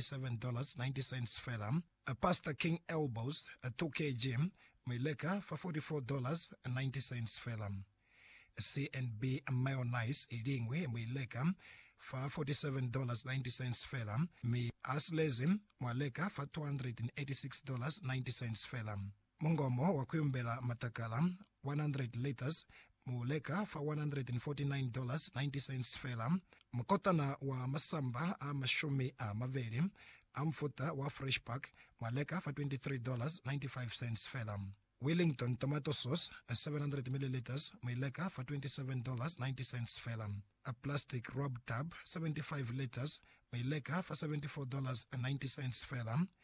$47.90 fela. Pastor King Elbows a tokezi mu i leka fa $44.90 fela. CNB Mayonnaise i liñwi mu i leka fa $47.90 fela, mi a silezi mwa leka fa $286.90 fela. Mungomo wa kuyumbela matakala 100 liters mu leka fa $149.90 fela. Mukotana wa masamba a mashumi a mabeli a mufuta wa Fresh Pack mwa leka fa $23.95 fela. Wellington tomato sauce 700 milliliters mu ileka fa $27.90 fela. A plastic rub tub 75 liters mu ileka fa $74.90 fela.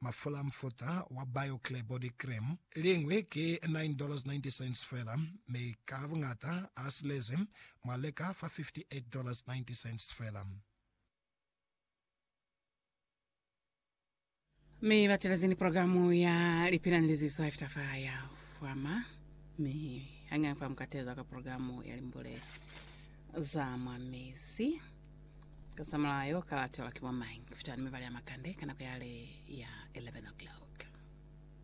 Mafula mufuta wa Bio-Clear Body Cream. Liñwi ki $9.90 fela, mi ka buñata a silezi mwa leka fa $58.90 fela. Mi batelezi ni programu ya Lipelang le Zizo After Fire ya Fwama, mi hañaña fa mu ka teza ka programu ya Limbule za mwa Mezi. Ka sa mulayo, ka latelwa ki bo mañi kufita ni mibala ya makande ka nako yale ya 11 o'clock?